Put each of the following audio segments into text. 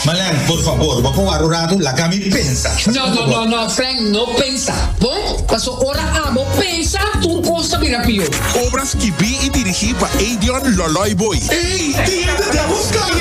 Malen, por fabor, bo con aru ratu laga mi pensa. No, no, no, no, Frank, no pensa, bon? Paso ora abo pensa, tur cos ta bira pior. Obra skibí i dirigí pa Eidion Lòlòi Booi. Ey, dia di Devil's Clan.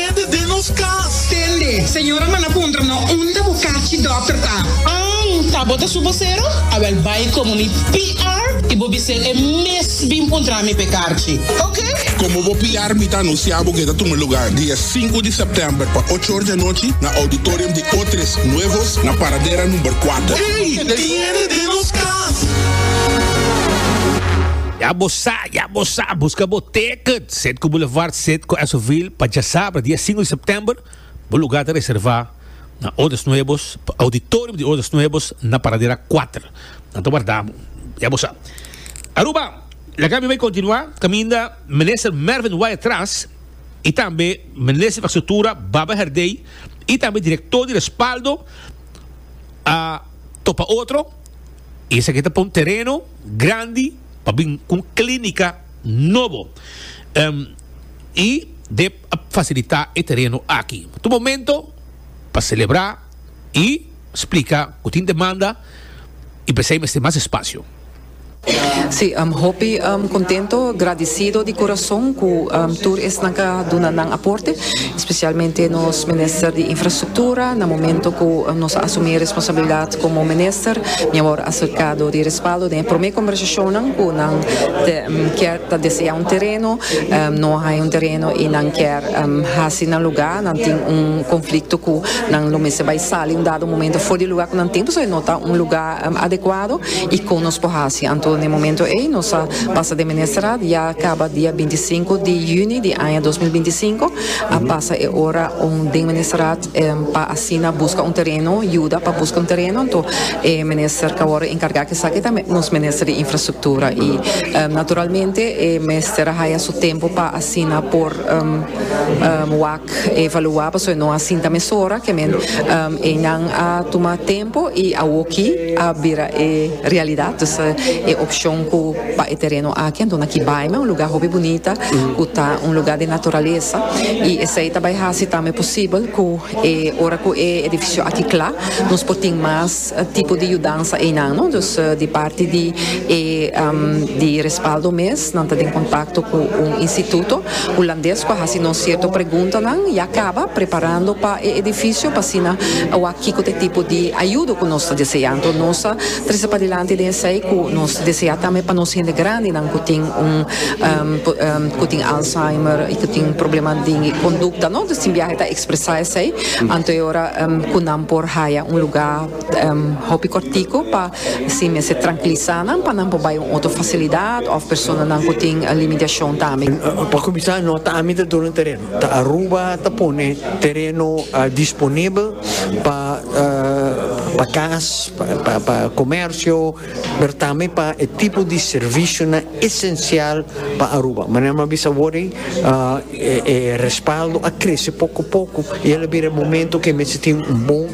Kede den nos kas. Tende, señora manda puntra no unda bo kachi dòkter ta. Ang, ta bo ta su bosero? Awèl bai komo mi PR i bo bis'é e mes bin puntra mi p'e karchi. Oke. Komo bo PR mi ta anunsiá bo ku e ta tuma lugá dia sinku di sèptèmber pa ocho or di anochi na Auditorium di Otres Nuevos na Paradera number kuater. Ey, tiende den nos kas. Ya bo sa, ya bo sa, buska bo teket, set ku Boulevard. Sit cu Esoville pa djasabra dia sinku di september, bo lugar ta reserva na Odes Nuebos pa auditorium di Odes Nuebos na paradera kuater. Nan ta warda bo, ya bo sa. Aruba, laga mi bai kontinua kaminda Minister Mervin Waya tras i tambe Minister di Infrastruktura Baba Herdey i tambe Direktor di Respaldo a topa otro i esaki ta pon tereno grandi pa bin ku un klinika. nobo y de facilita e tereno aki. Tu momento pa celebra y splica cu tin demanda y p'esey mester mas espacio. Si, hopi contento, gradicido di corazon cu tur esnan ca duna nan aporte, especialmente nos Minister di Infrastructura na momento cu nos a asumi e responsabilidad Komo minister mi a wòrdu aserkado di respaldo den e promé kombersashonnan ku nan kier ta deseá un tereno, no a haña un tereno i nan kier hasi nan lugá, nan tin un konflikto ku nan lo mester bai sali un dado momento for di e lugá ku nan tin pasobra e no ta un lugá adekuado i kon nos por hasi. Anto na e momento ei nos a pasa den Ministerat ya kaba dia binti i sinku di yüni di aña dos mil binti i sinku a pasa e ora den Ministerat. pa asina buska un tereno yuda pa buska un tereno anto e minister ta worde enkarga ku esaki ta nos minister di infrastruktura i naturalmente e mester a haya su tempu pa asina por wak evaluá pasobra e no a sinta mesora ke men e nan a tuma tempu i awoki a bira e realidad dus e opshon ku Pa e tereno aki a duna ki baime, un lugá hopi bunita ku ta un lugá di naturalesa, i esei ta bai hasi tambe posibel ku e ora ku e edifisio aki kla nos por tin mas tipo di yudansa einan, no. Dus di parti di e di respaldo mes nan ta den kontakto ku un instituto hulandes ku a hasi nos sierto preguntanan ya kaba preparando pa e edifisio pa asina wak kiko ta e tipo di ayudo ku nos ta deseá. Anto nos ta trese padilanti den esei ku nos. Desea tambe pa nos hende grandinan cu tin un cu tin Alzheimer y cu tin probleman di conducta no tin biaha ta expresa esey anto e ora cu nan por haya un lugar hopi cortico pa así mester trankilisa nan pa nan por bay un otro facilidad of personanan cu tin limitacion tambe. Pa cuminsa no ta ami ta duna tereno ta Aruba ta pone tereno disponibel pa cas pa comercio. pero tambe pa e tipo di servisionan esensial pa Aruba. Manera m'a bisa awor ei, e respaldo a krese poko poko i el a bira e momento ku e mester tin un bon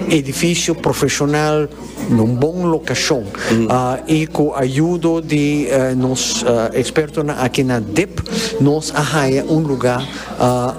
edifisio profeshonal na un bon lokashon i ku ayudo di nos ekspertonan aki na dep nos a haña un lugá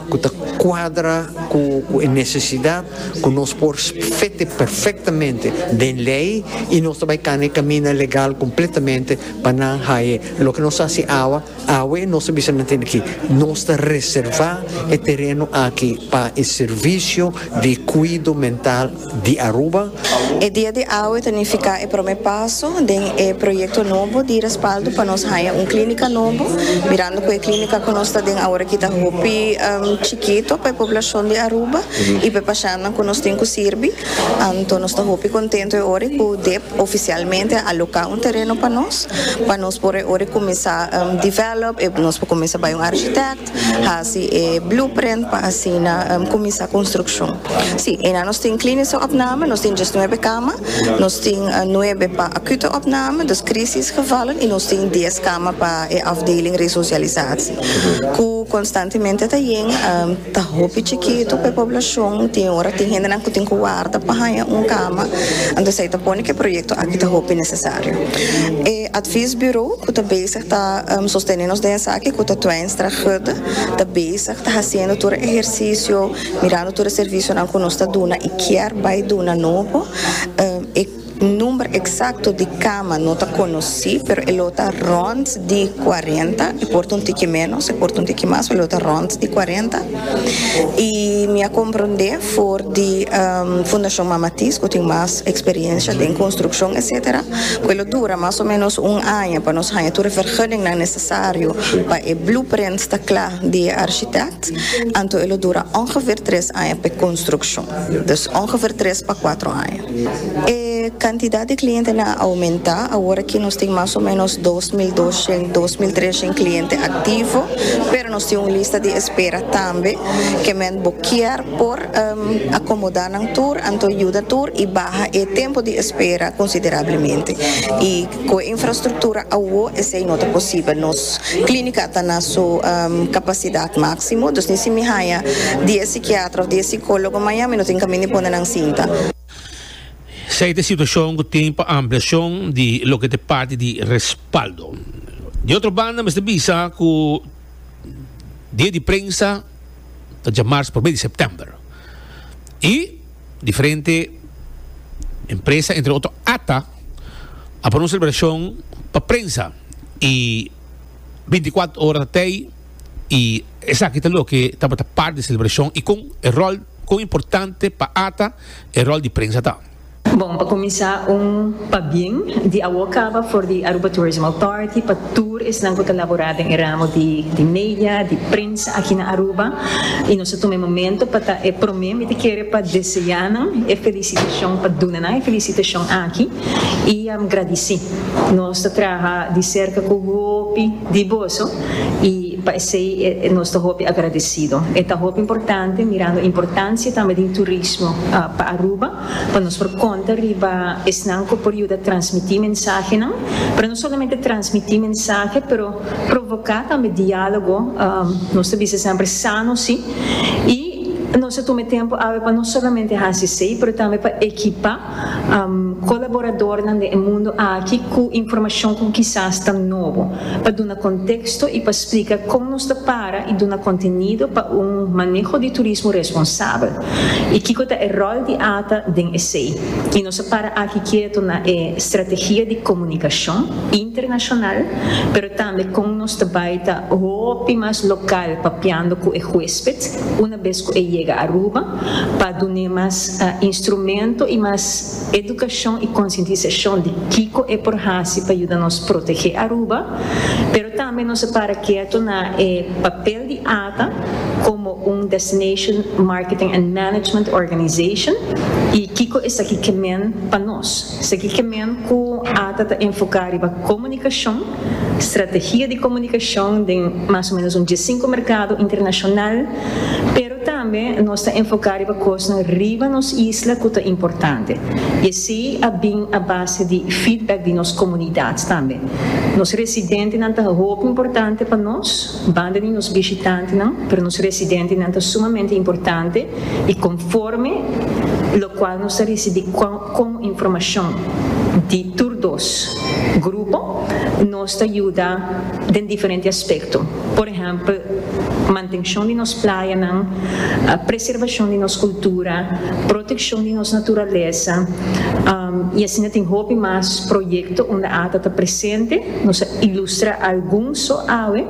ku ta kuadra ku e nesesidat. cu nos por fete perfectamente den ley y nos ta bay cana e camina legal completamente pa nan haye loke nos haci awa, awe nos ta bisa nan tin aki, nos ta reserva e tereno aki pa e servicio di cuido mental di Aruba. E dia di awe ta nifica e prome paso den e proyecto nobo di respaldo pa nos haya un clinica nobo, mirando cu e clinica cu nos ta den aworaki ta hopi chikito pa e poblacion di Aruba. i pa e pashannan ku nos tin ku sirbi. Anto nos ta hopi kontentu e ora ku dep ofisialmente a aloká un tereno pa nos, pa nos por e ora kuminsá develop, nos por kuminsá bai un architect, hasi e blueprint pa asina kuminsá konstrukshon. Sí, ena nos tin kliniese opname, nos tin djes nuebe kama, nos tin nuebe pa akute opname, dus krisisgevallen, i nos tin dies kama pa e afdeling resosialisasie ku konstantemente ta yen. Ta hopi chikitu pa e poblashon, tin ora tin hendenan ku tin ku warda pa haña un kama, anto esei ta pone ku e proyekto aki ta hopi nesesario. E advies bureau ku ta bezig ta sostene nos den esaki, ku ta Twijnstra Hudde, ta bezig ta hasiendo tur e ehersisio, mirando tur e servisionan ku nos ta duna i kier bai duna nobo. Number eksakto di kama no ta konosí, pero e lo ta rònt di kuarenta, e por ta un tiki ménos, e por ta un tiki mas, pero e lo ta rònt di kuarenta. I mi a komprondé for di Fundashon Mama Tis ku tin mas eksperiensia den konstrukshon etsetera, ku e lo dura mas o ménos un aña pa nos haña tur e vergunningnan nesesario pa e blueprint sta kla di e arshitèkt, anto e lo dura ongefeer tres aña pa e konstrukshon. Dus ongefeer tres pa kuatro aña. E kantidat di klientenan a oumentá, awor ki nos tin mas o ménos dos mil doshen, dos mil treshen kliente aktivo, pero nos tin un lista di espera tambe, ke men bo kier por akomodá nan tur, anto yuda tur i baha e tempu di espera konsiderablemente. Cu e infrastructura awo esey no ta posibel. Nos clinica ta na su capacidad maximo, dus ni si mi haya diez psiquiatra of diez psicologo maya mi no tin caminda pone nan sinta. Esey ta e situacion cu tin pa ampliacion di loke ta e parti di respaldo. Di otro banda mester bisa cu dia di prensa ta dja marza probe di september y diferente empresa entre otro ata. a pone un celebracion pa prensa y binti cuatro ora ta tey y esaki ta loke tabata part di celebracion y con e rol con importante pa ata e rol di prensa ta. Bon, pa cuminsa un pabien di awo caba for di Aruba Tourism Authority pa tur esnan cu ta labora den e ramo di di media, di prensa aki na Aruba y nos a tuma e momento pa ta e prome mi ta kere pa deseanan e. Decision pa duna nan e felicitacion aki y gradici. Nos ta traha di cerca cu hopi di boso y pa esey nos ta hopi agradecido. E ta hopi importante mirando e importancia tambe di turismo pa Aruba pa nos por conta riba esnan cu por yuda transmiti mensahenan, pero no solamente transmiti mensahe pero. Provoca tambe dialogo, nos ta bisa semper sano si, y nos a tuma tempo awe pa no solamente haci esey, pero tambe pa ekipa colaboradornan den e mundo aki cu informacion cu kisas ta nobo, pa duna contexto y pa splica con nos ta para y duna contenido pa un maneho di turismo responsabel. y kico ta e rol di ata den esey. Y nos a para aki kieto na e strategia di comunicacion internacional, pero tambe con nos ta bay ta hopi mas local papiando cu e huesped una bes cu e yega Aruba pa dun'e mas instrumento y mas edukashon i konsientisashon di kiko e por hasi pa yuda nos protegé Aruba, pero tambe nos a para keto na e papel di ata komo un Destination Marketing and Management Organization i kiko esaki ke men pa nos. Esaki ke men ku ata ta enfoká riba komunikashon, strategia di komunikashon den mas o ménos un diesinku merkado internashonal, pero. Pero tambe nos ta enfoká riba kosnan riba nos isla ku ta importante, i esei a bin a base di feedback di nos komunidat tambe. Nos residentenan ta hopi importante pa nos, banda di nos bishitantenan, pero nos residentenan ta sumamente importante i konforme lokual nos ta risibí kon informashon di tur dos grupo, nos ta yuda. den diferente aspekto, por ehèmpel, mantenshon di nos playanan, preservashon di nos kultura, protekshon di nos naturalesa, i asina tin hopi mas proyekto unda ata ta presente, nos a ilustra algun so awe,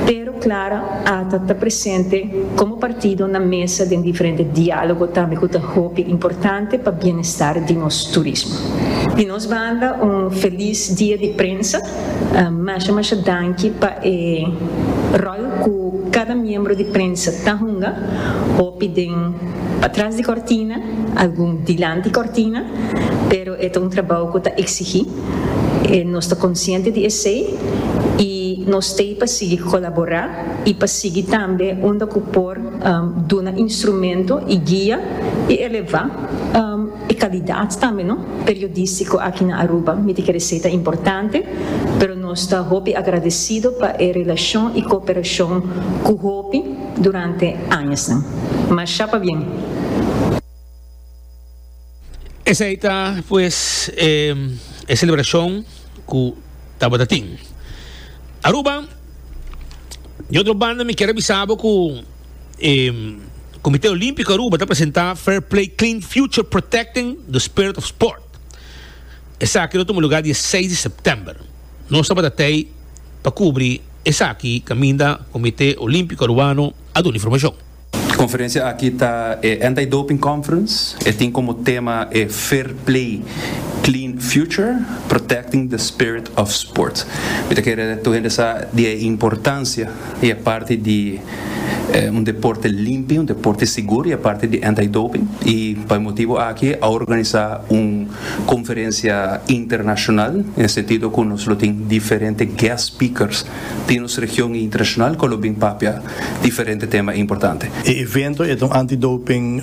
pero klar ata ta presente komo partido na mesa den diferente diálogo tambe ku ta hopi importante pa bienestar di nos turismo. Di nos banda un felis dia di prensa Masha masha danki pa e rol cu cada miembro di prensa ta hunga, hopi den patras di cortina, algun dilanti cortina, pero e ta un trabao cu ta exigi, e nos ta consciente di esey y nos t'ey pa sigui colabora y pa sigui tambe unda cu por duna instrumento y guia y eleva. E kalidat tambe no periodístiko aki na Aruba miti kere ser ta importante, pero nos ta hopi agradesido pa e relashon i kooperashon ku hopi durante añasnan. Masha pa bien! Esei ta pues e selebrashon ku tabata tin. Aruba, di otro banda mi kier a bisa bo ku. E. Comité Olímpico Aruba ta presenta Fair Play Clean Future Protecting the Spirit of Sport. Esaki lo tuma lugar dia 6 di september. Nos tabata tei pa cubri esaki caminda Comité Olímpico Arubano a duna informacion. Conferencia aki ta e Anti Doping Conference. E tin como tema e Fair Play Clean Future Protecting the Spirit of Sport. Mi ta kere tur hende sa di e importancia I a parti di un deporte limpi, un deporte sigur i a parti di anti-doping. I pa e motibu aki a organisá un konferensia internashonal, na e sentido ku nos lo tin diferente guest speakers di nos region i internashonal ku lo bin papia diferente tema importante. E evento e ta un anti-doping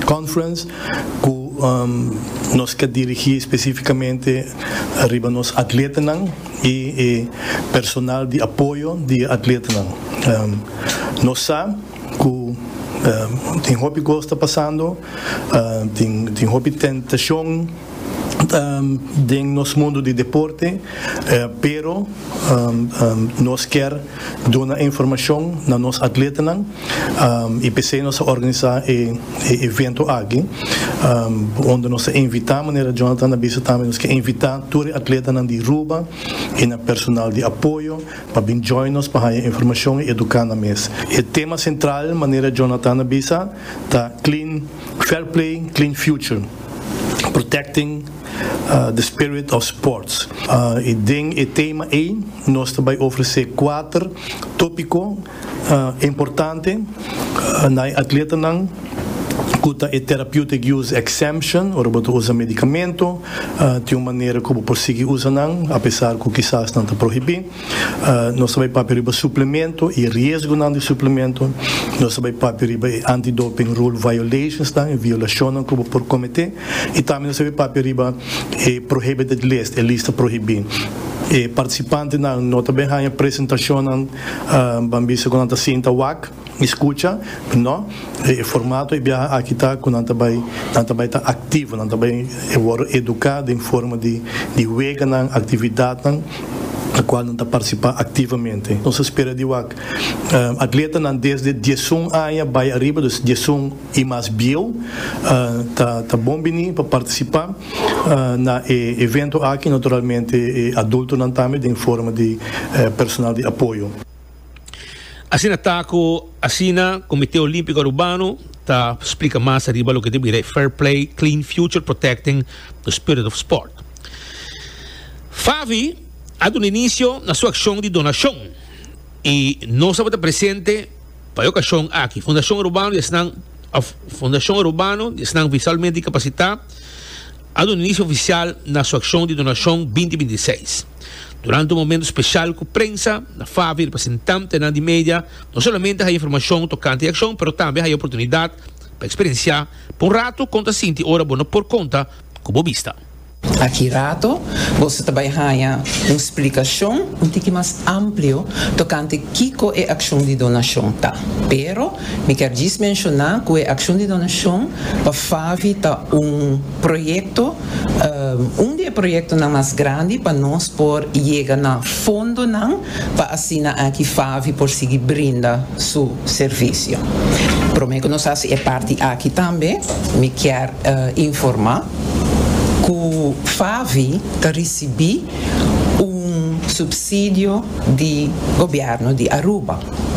conference ku nos ta dirigí spesífikamente riba nos atletanan. y e personal di apoyo di e atletanan. Nos sa cu tin hopi cos ta pasando, tin hopi tentacion den nos mundo di deporte, pero nos kier duna e informacion na nos atletanan. Y p'esey nos a organisa e evento aki, unda nos ta invita, manera Jonathan a bisa tambe, nos ke invita tur e atletanan di Ruba y nan personal di apoyo pa bin join nos pa haya informacion y educa nan mes. E tema central, manera Jonathan a bisa, ta Clean Fair Play, Clean Future, Protecting the Spirit of Sports. Y den e tema ey nos ta bay ofrece cuater topico. Importante na e atletanan ku ta e Therapeutic Use Exemption ora bo ta usa medikamento tin un manera ku bo por sigui usa nan apesar ku kisas nan ta prohibí. Nos ta bai papia riba suplemento i e riesgonan di suplemento. Nos ta bai papia riba e anti-doping rule violationsnan, e violashonnan ku bo por kometé, i tambe nos ta bai papia riba e prohibited list, e lista prohibí. E partisipantenan no ta bai haña presentashonnan. Ban bisa cu nan ta sinta wak y scucha. No. E formato di e biaha aki ta cu nan ta bay, nan ta bay ta activo, nan ta bay worde educa den forma di weganan, actividadnan na cual nan ta participa activamente. Nos a spera di wak atletanan desde diesun aña bay ariba, dus diesun. I mas bieu ta bon bini pa participa na e evento aki, naturalmente e adultonan tambe den forma di personal di apoyo. Asina ta cu asina Comité Olímpico Arubano ta splica mas ariba loke ta bira e Fair Play, Clean Future Protecting the Spirit of Sport. Favi a duna inicio na su accion di donacion y nos tabata presente. Pa e okashon aki, Fundashon Urbano di Esnan of Fundashon Urbano di Esnan Visualmente Dikapasitá a duna inisio ofisial na su akshon di donashon binti binti seis. Durante un momentu speshal ku prensa, na Favi representantenan di media no solamente haya informashon tokante e akshon pero tambe haya oportunidat pa eksperensiá pa un ratu kon ta sinti ora bo no por konta ku bo bista. Aki rato boso ta bai haña un splikashon un tiki mas amplio tokante kiko e akshon di donashon ta, pero mi kier djis menshoná ku e akshon di donashon pa FAVI ta un proyekto, un di e proyektonan mas grandi pa nos por yega na fondonan pa asina aki Favi por sigui brinda su servisio. Prome cu nos haci e parti aki tambe, mi kier informa cu Favi ta ricibi un subsidio di Gobierno di Aruba.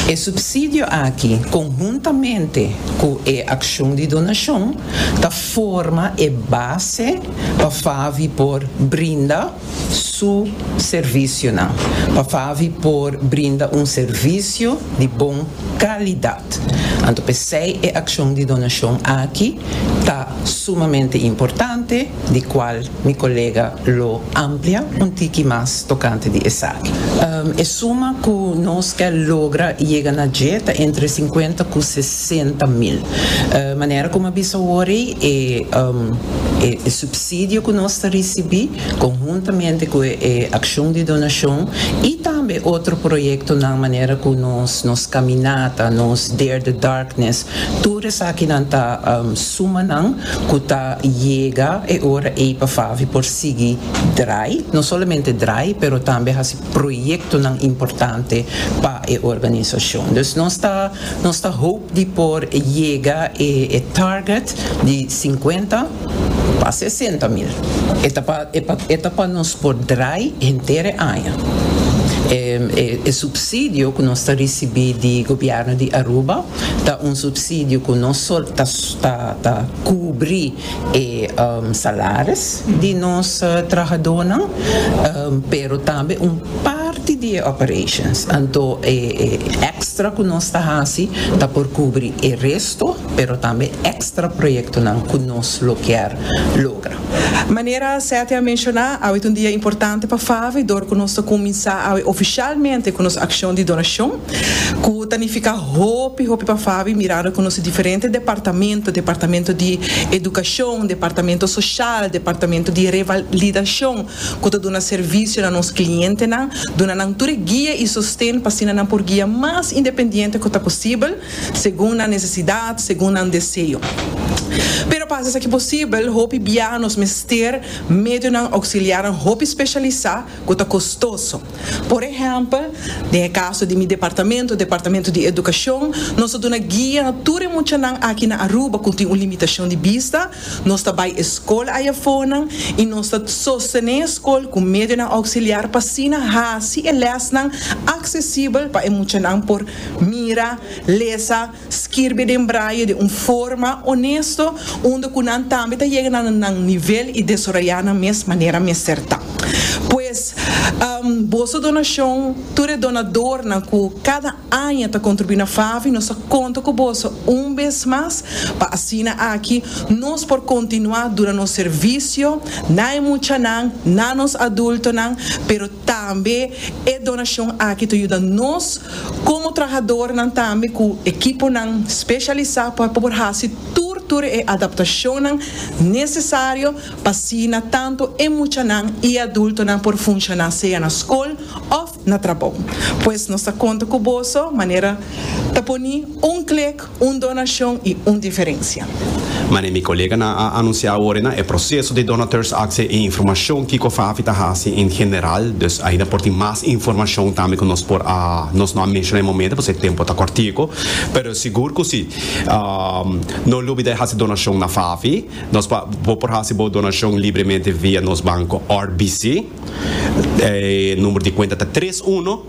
E subsidio aki, conhuntamente cu e accion di donacion, ta forma e base pa Favi por brinda, su servisionan pa Favi por brinda un servisio di bon kalidat. Anto p'esei e akshon di donashon aki ta sumamente importante, di kual mi kolega lo amplia un tiki mas tokante di esaki. E suma ku nos ke logra yega na dje ta entre sinkuenta ku sesenta mil. Manera ku mi a bisa awor ei, e e supsidio ku nos ta risibí konhuntamente ku e akshon di donashon i tambe otro proyektonan manera ku nos nos kaminata, nos Dare the Darkness, tur esakinan ta sumanan ku ta yega e ora ei pa Favi por sigui drai, no solamente drai pero tambe hasi proyektonan importante pa e organisashon. Dus nos ta. Nos ta hoop di por yega e target di sinkuenta pa sesenta mil. E ta pa nos por draai henter e aña. E supsidio ku nos ta risibí di gobièrnu di Aruba ta un supsidio ku no ta kubrí e salaris di nos trahadonan pero tambe un parti di e operations anto e extra cu nos ta haci ta por cubri e resto pero tambe extra proyectonan cu nos lo kier logra. Manera Seti a menciona awe ta un dia importante pa FAVE dor cu nos ta cuminsa awe oficialmente cu nos accion di donacion. cu ta nifica hopi hopi pa Fabi mirando cu nos diferente departamento, departamento di educacion, departamento social, departamento di revalidacion cu ta duna servicio na nos clientenan, duna nan tur e guia y sosten pa asina nan por guia mas independiente cu ta posibel, segun nan necesidad, segun nan deseo. Pero pa haci esaki posibel, hopi biaha nos mester medionan auxiliarnan hopi specialisa, ku ta kostoso. Por ehèmpel, den e kaso di mi departamento, Departamento di Edukashon, nos a duna guia na tur e muchanan aki na Aruba ku tin un limitashon di bista, nos ta bai e skol ayafonan i nos ta sostené e skol ku medionan ouksiliar pa asina hasi e lèsnan aksesibel pa e muchanan por mira, lesa, Skirbi den braye den un forma onesto unda ku nan tambe ta yega na nan nivel i desaroyá nan mes manera mester ta. Pues, boso donashon, tur e donadornan ku kada aña ta kontribuí na FAVI, nos ta konta ku boso un bes mas pa asina aki nos por kontinuá duna nos servisio na e muchanan, na nos adultonan, pero tambe e donashon aki ta yuda nos Komo trahadornan tambe ku ekiponan speshalisá pa por hasi tur tur e adaptashonnan nesesario pa asina tantu e muchanan i e adultonan por funshoná sea na skol òf na trabou. Pues nos ta konta ku boso manera ta poni un klik Un donashon i un diferensia. Manera mi koleganan a anunsiá awor na e proseso di donateurs akse i informashon kiko Fafi ta hasi en general, dus ainda por tin mas informashon tambe ku nos por a nos no a menshoná e momento pasobra e tempu ta kòrtiku, pero sigur ku si no lubida e hasi donashon na Fafi, nos por bo por hasi bo donashon libremente via nos banko RBC, e number di kuenta ta tres uno.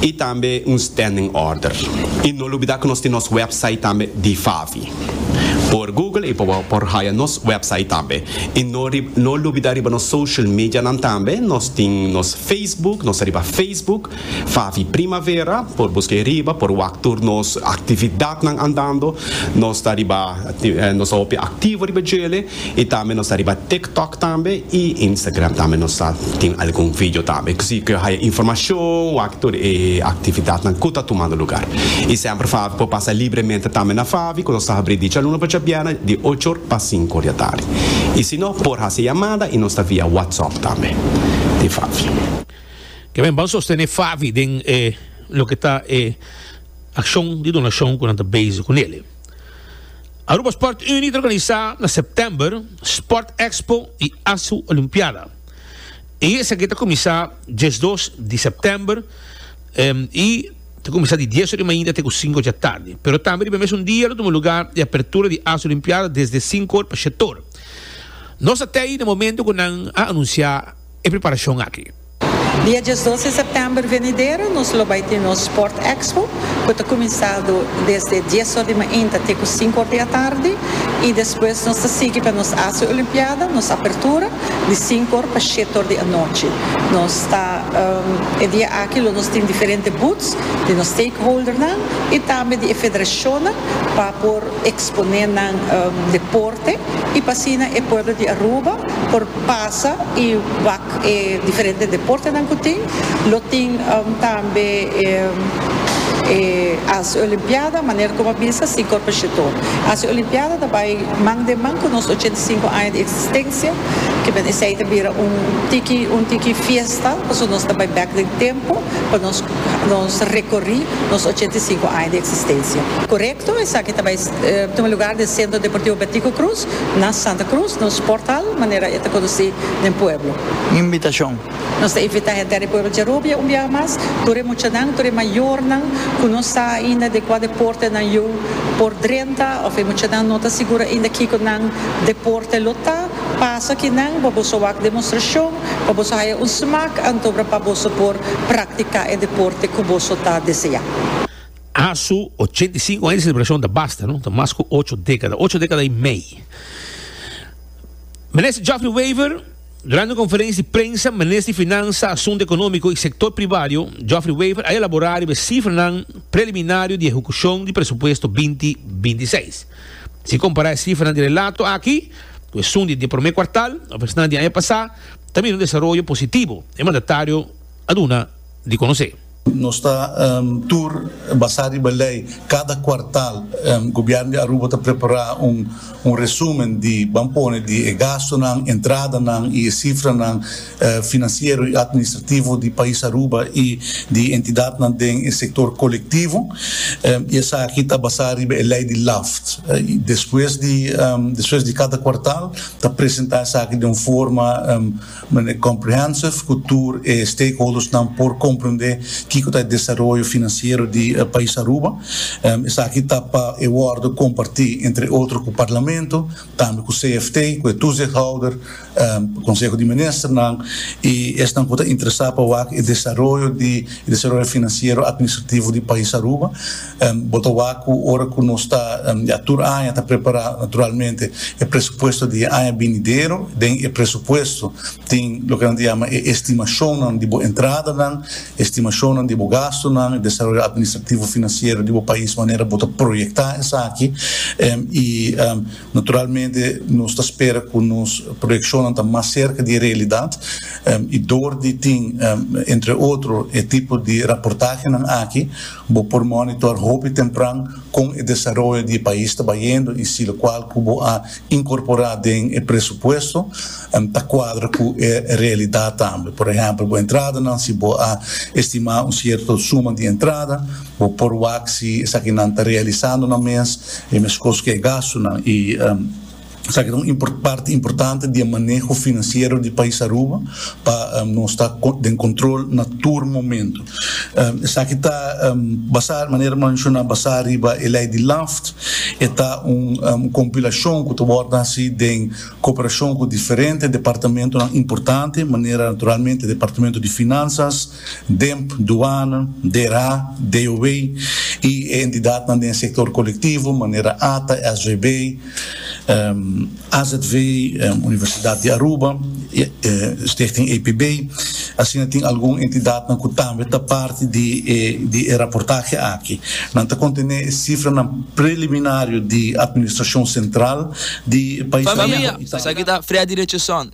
y tambe un standing order. Y no lubida cu nos tin nos website tambe di Favi. Por Google y por haya nos website tambe. Y no no lubida riba nos social medianan tambe, nos tin nos Facebook, nos ta riba Facebook, Favi Primavera, por busca e riba, por wak tur nos actividadnan andando, nos ta riba, nos ta hopi activo riba djele. Y tambe nos ta riba TikTok tambe y Instagram tambe nos ta tin algun video tambe. Cu si cu haya informacion wak tur e actividadnan cu ta tumando lugar. Y semper Favi por pasa libremente tambe na Favi cu nos ta habri di djalunes pa djabièrnè di ocho or pa sinku or di atardi. Y si no por haci yamada y nos ta via WhatsApp tambe di Favi. Ke men ban sostene Favi den e loke ta e accion di donacion cu nan ta bezig cu nele. Aruba Sport Unie ta organisa na September Sport Expo y Asu Olimpiada. E esaki ta kumisa diesdos di September y ta kumisa di dies ora di mainta te ku sinku dja tardi. Pero tambe riba e mesun dia lo tuma luga e apertura di Asu Olimpiada desde sinku or pa shet or. Nos ta tei na momento ku nan a anunsia e preparashon aki. Dia djes dos di sèptèmber venidero nos lo bai tin nos Sport Expo ku ta kuminsado desde dies or di mainta te ku sinku or di atardi i despues nos ta sigui pa nos Asia Olimpiada, nos apertura di sinku or pa shete or di anochi. Nos ta E dia aki lo nos tin diferente booths di nos stakeholdernan i tambe di e federashonnan pa por eksponé nan deporte i pa asina e pueblo di Aruba por pasa i wak. E diferente deportenan ku tin, lo tin tambe e Asia Olimpiada, manera ku bo a bisa si Korpe Shito. Asia Olimpiada ta bai man den man ku nos ochenta i sinku aña di eksistensia, kimin esei ta bira un tiki un tiki fiesta, pasobra nos ta bai bèk den tempu pa nos nos rekorí nos ochenta i sinku aña di eksistensia. Korekto, esaki ta bai tuma lugar den Sentro Deportivo Bertico Cruz. Na Santa Cruz nos portal, manera e ta conoci den pueblo. Invitacion. Nos ta invita henter di pueblo Gerubia un biaha mas, tur e muchanan, tur e mayornan cu no sa ainda den cua deporte nan yu por drenta of e muchanan no ta sigur ainda kico nan deporte lo ta, pasa aki nan pa boso wak demostracion, pa boso haya un smaak, antobra pa boso por practica e deporte cu boso ta desea. A su ochenta i sinku aña di selebrashon ta basta, no ta mas ku ocho dekada, ocho dekada i mei. Minister Geoffrey Wever, durante un konferensia di prensa, Minister di Finansa, Asuntu Ekonómiko i Sektor Pribario, Geoffrey Wever, a elaborá riba e sifranan preliminario di ehekushon di presupuesto binti binti seis. Si kompará e sifranan di relato aki ku esun di e promé kuartal òf esnan di aña pasá, ta mira un desaroyo positivo, e mandatario a duna di konosé. Nos ta tur basá riba lei. Kada kuartal Gobièrnu di Aruba ta prepará un resúmen di ban pone di e gastunan, entradanan i e sifranan finansiero i atministrativo di pais Aruba i di entidatnan den e sektor kolektivo. I esaki ta basá riba e lei di LAFT. Despues di kada kuartal ta presentá esaki den un forma. Manera e comprehensive cu tur e stakeholdersnan por comprende kico ta e desaroyo financiero di pais Aruba. Esaki ta pa e wordo comparti entre otro cu Parlamento, tambe cu CFT, cu e toezichthouder, Conseho di Ministernan y esnan cu ta interesa pa wak e desaroyo di e desaroyo financiero administrativo di pais Aruba. Bo ta wak cu ora cu nos ta ya tur aña ta prepara, naturalmente e presupuesto di e aña binidero, den e presupuesto tin loke nan ta yama e estimacionnan di bo entradanan, e estimacionnan di bo gastonan, e desaroyo administrativo financiero di bo pais manera bo ta proyecta esaki, y naturalmente nos ta spera cu nos proyeccionnan ta mas cerca di e realidad, y door di tin entre otro e tipo di raportahenan aki, Bo por monitor hopi tempran kon e desaroyo di e pais ta bayendo i si lokual ku bo a inkorporá den e presupuesto ta kuadra ku e realidat tambe. Por ehèmpel, bo entradanan, si bo a estimá un sierto suma di entrada, bo por wak si esakinan ta realisando nan mes e meskos ku e gastunan i. Esaki ta un parti importante di e maneho finansiero di pais Aruba pa nos ta den control na tur momento. Esaki ta basa, manera mi a menciona, basa riba e ley di LAFT. E ta un compilacion cu ta word haci den cooperacion cu diferente departamentonan importante, manera naturalmente Departamento di Finanzas, Demp, Duana, DERA, DOW i e entidatnan den sektor kolektivo manera ata, SJB, AZV, Universidat di Aruba, Stichting APB. Asina tin algun entidatnan ku tambe ta parti di e raportahe aki. Nan ta kontené e sifranan preliminario di Administrashon Sentral di pais. Familia, esaki ta Freddy Richardson,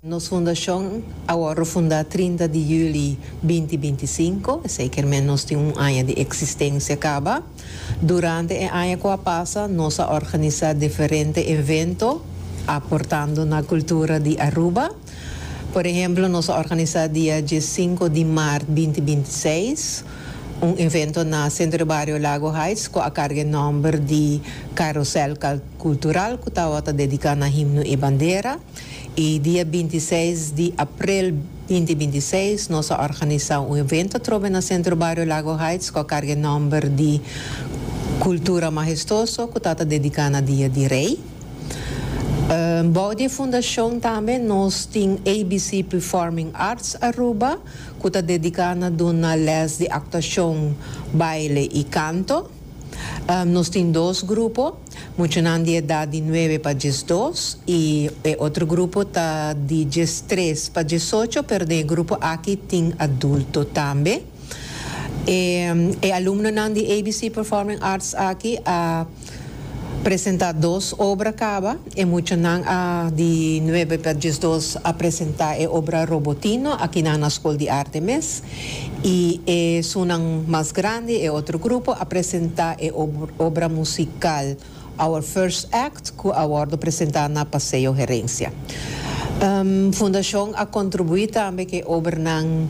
Nos fundashon a wòrdu fundá trinta di yüli binti binti sinku, esei ker men nos tin un aña di eksistensia kaba. Durante e aña ku a pasa nos a organisá diferente evento aportando na kultura di Aruba. Por ehemplo nos a organisá dia die sinku di mart binti binti seis un evento na Sentro de Bario Lago Heights ku a karga e nòmber di Carusel Cultural ku tawata dediká na himno i bandera. I dia binti seis di aprel binti binti i seis nos a organisá un evento atrobe na Centro Barrio Lago Heights ku a karga e nòmber di Cultura Majestuoso ku ta ta dediká na Dia di Rei. Bou di e fundashon tambe nos tin ABC Performing Arts Aruba ku ta dediká na duna lès di aktuashon, baile i kanto. Nos tin dos grupo. Muchanan di edat di nuebe pa diesdos y e otro grupo ta di diestres pa diesocho, pero den e grupo aki tin adulto tambe. E e alumnonan di ABC Performing Arts aki a presenta dos obra caba. E muchanan a di nuebe pa diesdos a presenta e obra Robotino aki na na Scol di Arte mes. I e sunnan mas grandi, e otro grupo, a presentá e obra musikal Our First Act ku a wòrdu presentá na Paseo Herencia. Fundashon a kontribuí tambe ku e obranan,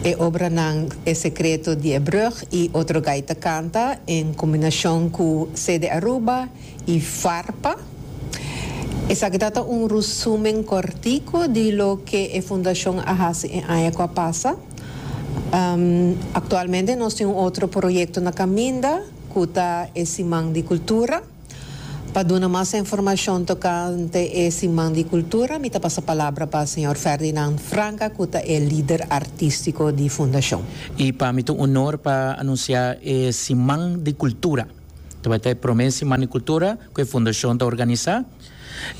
e obranan E Secreto di e Brug i Otro Gaita Canta en kombinashon ku CD Aruba, y Farpa. Esaki ta ta un rusumen cortico di loke e Fundacion a haci e aña cu a pasa. Actualmente nos tin un otro proyecto na caminda cu ta e Siman di Cultura. Pa duna mas informacion tocante e Siman di Cultura mi ta pasa palabra pa señor Ferdinand Franca cu ta e lider artistico di Fundacion. Y pa mi ta un honor pa anuncia e Siman di Cultura. Ta bai ta e prome Siman di Kultura ku e Fundashon ta organisá.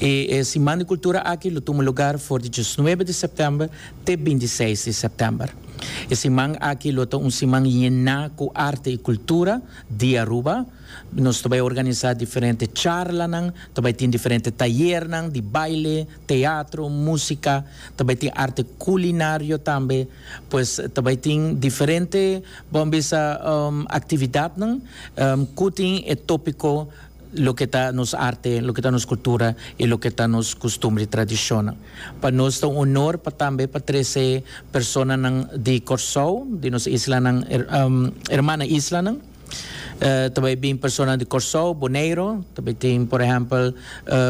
I e Siman di Kultura aki lo tuma lugar for di diesnuebe di sèptèmber te binti seis di sèptèmber. E siman aki lo ta un siman yená ku arte i kultura di Aruba. Nos ta bai organisá diferente charlanan, ta bai tin diferente tayernan di baile, teatro, músika, ta bai tin arte kulinario tambe. Pues ta bai tin diferente bo a bisa actividadnan cu tin e topico loke ta nos arte, loke ta nos cultura y loke ta nos costumbre y tradicionnan. Pa nos ta un honor pa tambe pa trece personanan di Corsou, di nos islanan hermana islanan. Ta bai bin personanan di Corsou, Boneiro, ta bai tin por ehempel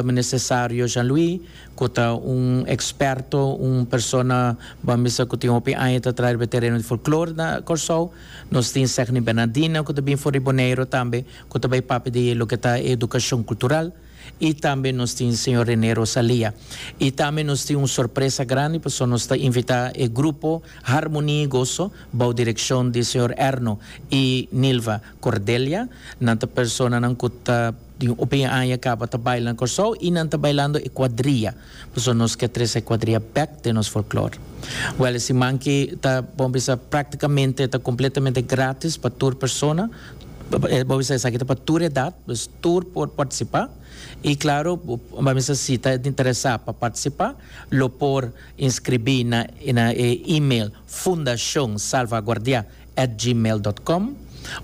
Minister Sario Jean Louis, ku ta un eksperto, un persona ban bisa ku tin hopi aña ta traha riba e tereno di folklore na Kòrsou. Nos tin Segni Bernardina ku ta bin for di Boneiru tambe ku ta bai papia di loke ta e edukashon kultural i tambe nos tin señor Rene Rosalia. I tambe nos tin un sorpresa grandi pasobra nos ta invitá e grupo Harmonia i Gozo bou direkshon di señor Erno i Nilva Cordelia. Nan ta personanan ku ta. Di un ope aña caba ta baila na Corsou y nan ta bailando e cuadria, pasobra nos ke trese e cuadria bek den nos folklor. Wel e siman ki ta bo bisa practicamente ta completamente gratis pa tur persona, bo bisa esaki ta pa tur edad, dus tur por participa y claro bo a bisa si ta interesa pa participa lo por inscribi na e email fundacionsalvaguardia. at gmail dot com,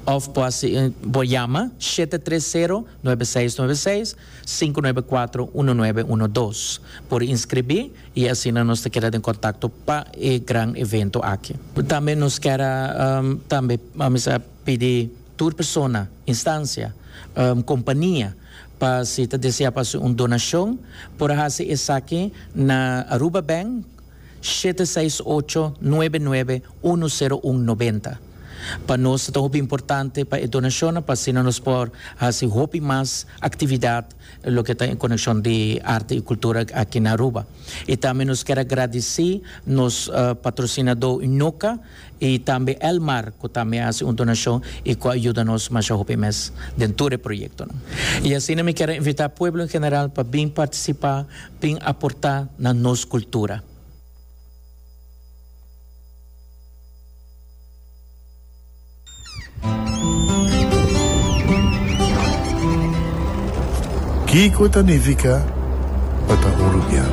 of bo a si bo yama shete tres sero nuebe seis nuebe seis sinku nuebe kuatro uno nuebe uno dos por inskribí i asina nos ta keda den kontakto pa e gran evento aki. Tambe nos kier a tambe a misa pidi tur persona, instancia, kompania pa si ta desea pa hasi un donashon por a hasi esaki na Aruba Bank shete seis ocho, nuebe nuebe, unu sero un nobenta. Pa nos ta hopi importante pa e donashonnan pa asina nos por hasi hopi mas aktividat loke ta en konekshon di arte i kultura aki na Aruba. I tambe nos kier a gradisí nos patrosinadó Noka i tambe Elmar ku tambe a hasi un donashon i ku a yuda nos masha hopi mes den tur e proyektonan. I asina mi kier a invitá pueblo en general pa bin partisipá. tin aportá na nos kultura. Kiko ta nifiká pa ta un rubian?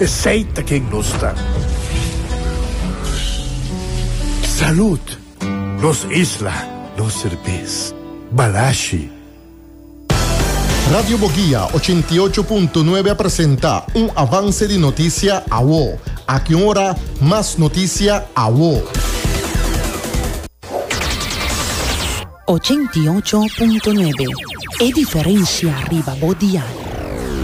Esey ta ken nos ta. Salud! Nos isla, nos serbes. Balashi! Radio Boguia ochenta i ocho punto nuebe a presenta un avance di notisia awo. Aki un ora mas notisia awo. Ochenta i ocho punto nuebe, e diferencia riba bo dial.